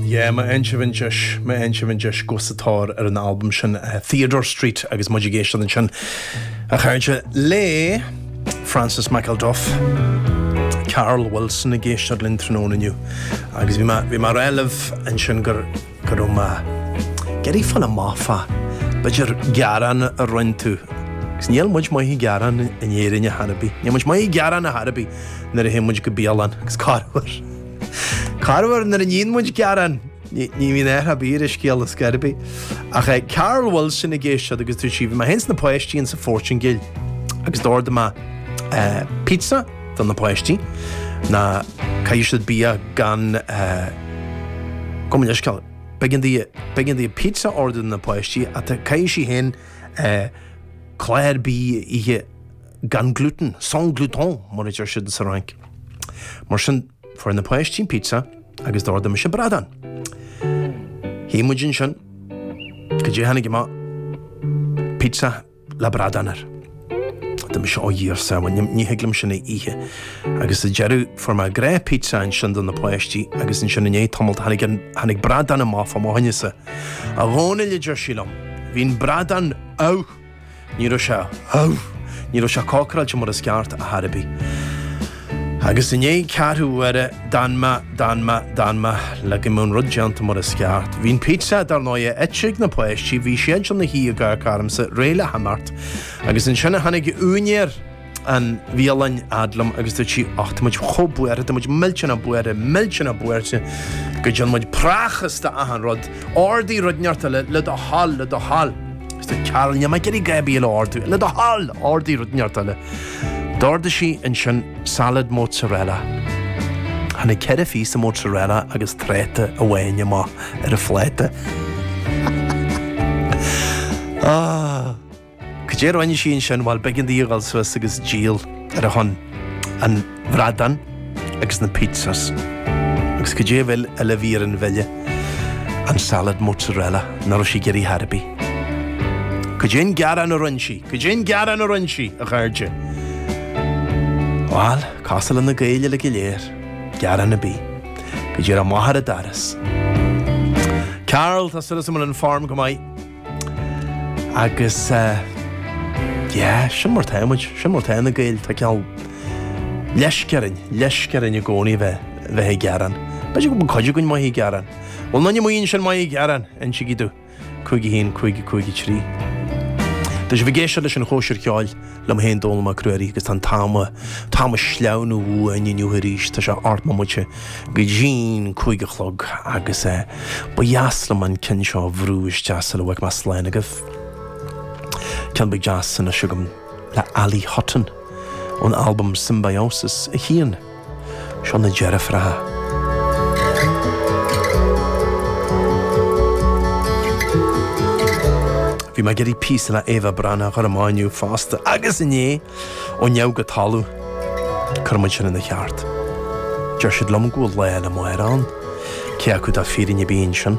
Yeah, my Encheventjes, my Encheventjes agus an-tóir ar an albam sin, uh, Theodore Street agus muid ag éisteacht ansin a chairde le Francis McIlduff. Carol Wilson ag éisteacht linn tráthnóna inniu agus bhí mé, bhí mé ag rá libh ansin gur go raibh mé ag iarraidh fáil amach fá, b'fhéidir gearán a rinne tú. Agus níl muid maith ag gearán in Éirinn ar chor ar bith. Níl muid maith ag gearán ar chor ar bith nuair a théann muid go bialann. Agus corruair. Corruair nuair a níonn muid gearán. Ní ní bhíonn air ab fhíor a scéal is gairbe. Ach eh Carol Wilson ag éisteacht agus dúirt sí bhí mé fhéin is na páistí insa Phortaingéil. Agus d'ordaigh mé eh, pizza do na páistí nó caithfidh siad bia gan Gabh mo leithscéal, b'éigean di pizza a ordú do na páistí ach caithfidh sí féin clár bídh a ithe gan gluten, sans gluten mar a deir siad sa Fhrainc. Mar sin, fuair na páistí an pizza agus d'ordaigh mise bradán. Shuigh muid ansin go dtí a tháinig pizza. le bradán air. Dúirt mise, ó Dhia ár sábháil, ní thig liom sin a ithe. Agus sa deireadh fuair mé dhá phizza ansin do na páistí agus ansin i ndiaidh tamalt tháinig an, tháinig bradán amach fá mo choinnese. A Dhónaill a deir sí liom, bhí an bradán amh! Ní raibh sé ah, ní raibh sé cócaráilte mar is ceart ar chor ar bith. Agus i ndiaidh ceathrú uaire, d'fhan mé, d'fhan mé, d'fhan mé, le go mbeadh an rud déanta mar is ceart. Bhí an pizza, dar ndóighe, ite ag na páistí, bhí siad ina shuí ag amharc ormsa réidh le himeacht. Agus ansin a tháinig úinéir an bhialann fhad liom agus dúirt sí, Och, tá muid chomh buartha, tá muid millteanach buartha, millteanach buartha go dtearn muid prácás d'achan rud. Ordaigh rud inteacht eile le do thoil, le do thoil. Arsa Carol, níl mé ag iarraidh a dhath ar bith eile a ordú. Le do thoil! Ordaigh rud inteacht eile. D'ordaigh sí ansin salad mozzarella. Tháinig ceithre phíosa mozzarella agus tráta amháin amach ar an phláta. Ah! Cad é a rinne sí ansin? Bhuel, b'éigean di a dhul suas agus díol ar son an bhradáin agus na pizzas. Agus cad é a bhfuil eile a bhí ar an bhille? An salad mozzarella, nach raibh sí ag iarraidh ar chor ar bith. Cad é an gearán a rinne sí? Cad é an gearán a rinne sí, a chairde? Bhuel, cosúil le na Gaeil uilig go léir, gearán ar bith. Go raibh maith agat arís, Carol, tá súil agam go bhfuil an form go maith. Agus eh yeah, sin mar atá muid, sin mar atá na Gaeil, tá cineál leisce orainn, leisce orainn i gcónaí bheith, bheith ag gearán. B'fhéidir go bhfuil cuid againn maith ag gearán. Bhfuil aon duine amuigh ansin maith ag gearán, insígí domh, 51553. Tá sibh ag éisteacht leis an Chóisir Cheoil. liom féin, Dónall Mac Ruairí, agus tá an t-am, t-am ag sleamhnú uainn inniu arís, tá sé ocht mbomaite go dtí an cúig a chlog agus eh, ba dheas liom an ceann seo a bhrú isteach sula bhfága mé slán agaibh. Ceann beag deas anseo agam le Ali Hutton ón albam Symbiosis a haon. Seo na deirfiúracha. Bhí mé ag iarraidh píosa le Éabha Breathnach a chur amach inniu fosta agus inné ó neamh go talamh cuirfidh muid sin ina cheart. Deir siad liom go bhfuil lá eile amárach ann, cé acu tá fírinne ar bith ansin?